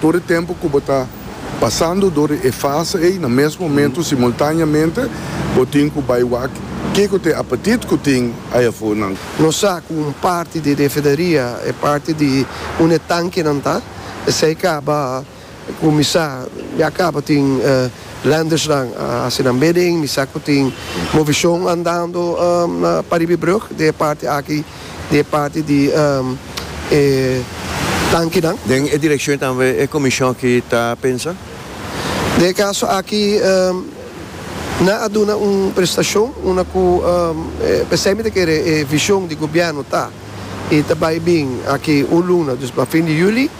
Tur e tempu ku bo ta pasando dor di e fase ei, na mes momentu simultáneamente bo tin ku bai wak kiko ta e apetit ku tin ai afó nan. Nos sa ku un parti di refinaria e parti di un e tankenan ta. Esei kaba kuminsá, ya kaba tin lendersnan a hasi nan bidding, mi sa ku tin movishon andando na paribibrug den e parti aki. di e parti di e tankinan. Den e direkshon tambe e komishon aki ta pensa? Den e kaso aki nan a duna un prestashon unda ku p'esei mi ta kere e vishon di gobièrnu ta i ta bai bin aki un luna, dus pa fin di yuli.